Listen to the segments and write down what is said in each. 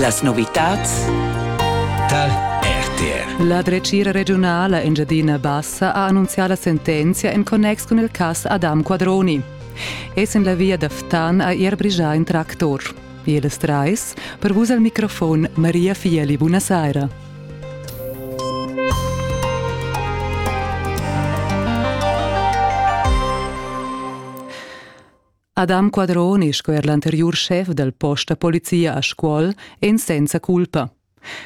Las novitads tar RTR. La dretgira regiunala Engiadina Bassa ha annunzià la sentenzia en connex cun il cass Adam Quadroni. Es en la via da Ftan ha er brigià in tractor. Eles trais, per vus al microfon Maria Fieli, buonasera. Adam Quadroni sco er l'anteriur schef dal post da polizia a Scuol èn senza culpa.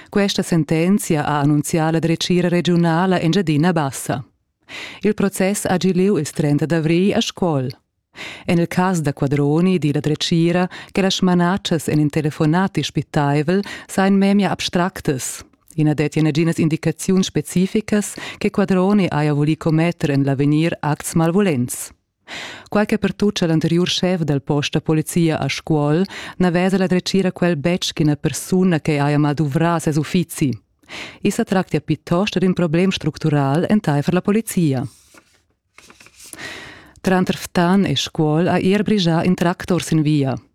Questa sentenzia ha annunzià la dretgira regiunala Engiadina Bassa. Il process ha gì lieu il 30 d'avrigl a Scuol. En il cas da Quadroni di la dretgira che las smanatschas en in telefonati spittaivel seien memia abstractas. I na dettia naginas indicaziuns specificas che Quadroni haja vulì commetter en l'avegnir acts malvulents. Quai che pertuccha l'anteriur schef dal post da polizia a Scuol n'aveva la dretgira quel betg ch'ina persuna che haja malduvrà ses uffizi. I sa tractia piuttost d'in problem structural entaifer la polizia. Tranter Ftan e Scuol ha er brigià in tractor sin via.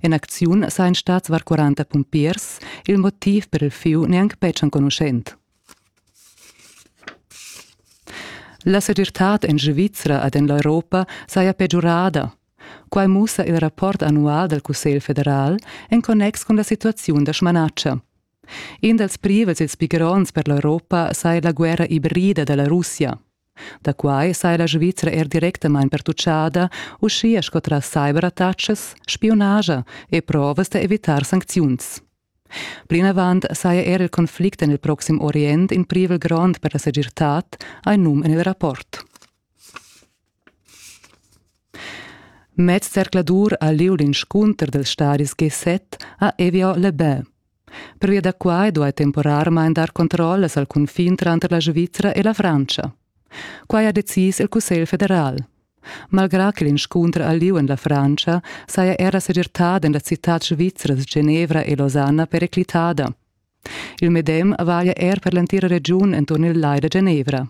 En acziun sajan stats var 40 pumpiers, il motiv per il fieu neanc betg enconuschent. La segirtad en Svizra ed en l'Europa saja pegiurada. Quai mussa il rapport annual dal Cussegl federal en connex cun la situaziun da smanatscha. In dals privels ils pigrons per l'Europa saja la guerra ibrida da la Russia. Da quai saja la Svizra er directamain pertutgada, uschia sco tras cyberattacas, spiunagia e provas da evitar sancziuns. Plinavant saja er il conflict en il proxim Orient in privel grond per la segirtad, hai num en il rapport. Mez zercladur a lieu l'inscunter dels stadis G7 ha Evio Lebel. Pervia da quai duai temporarmain dar controllas al cunfin tranter la Svizra e la Frantscha. Quai ha decis il Cussegl federal. Malgrà che l'inscunter al lieu en la Frantscha saja era segirtada en las citads svizras Genevra e Losanna periclitada. Il medem valia er per l'entira regiun enturn il Lai da Genevra.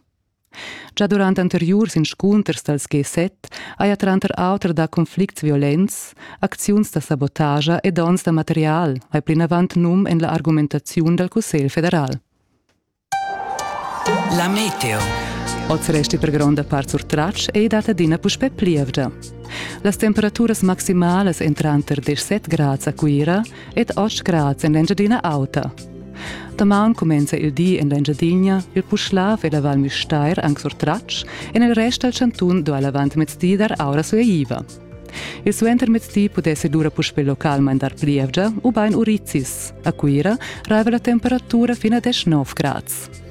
Gia durant anteriurs inscunters dals G7 haja tranter auter dà conflicts violents, acziuns da sabotagia e dons da material, hai plinavant num en la argumentaziun dal Cussegl federal. La meteo. Oz resti per gronda part surtratg e dat adina puspè plievgia. Las temperaturas maximalas èn tranter 17 grads a Cuira ed oz grads en l'Engiadina Auta. Damaun cumenza il di en l'Engiadina, il Puschlav e la Val Müstair anc surtratgs, en il rest dal chantun do l'avantmezdi dar aura sueiva. Il suentermezdi pudessi lura puspè local mandar plievgia ubain urizis. A Cuira raiva la temperatura fino a 19 grads.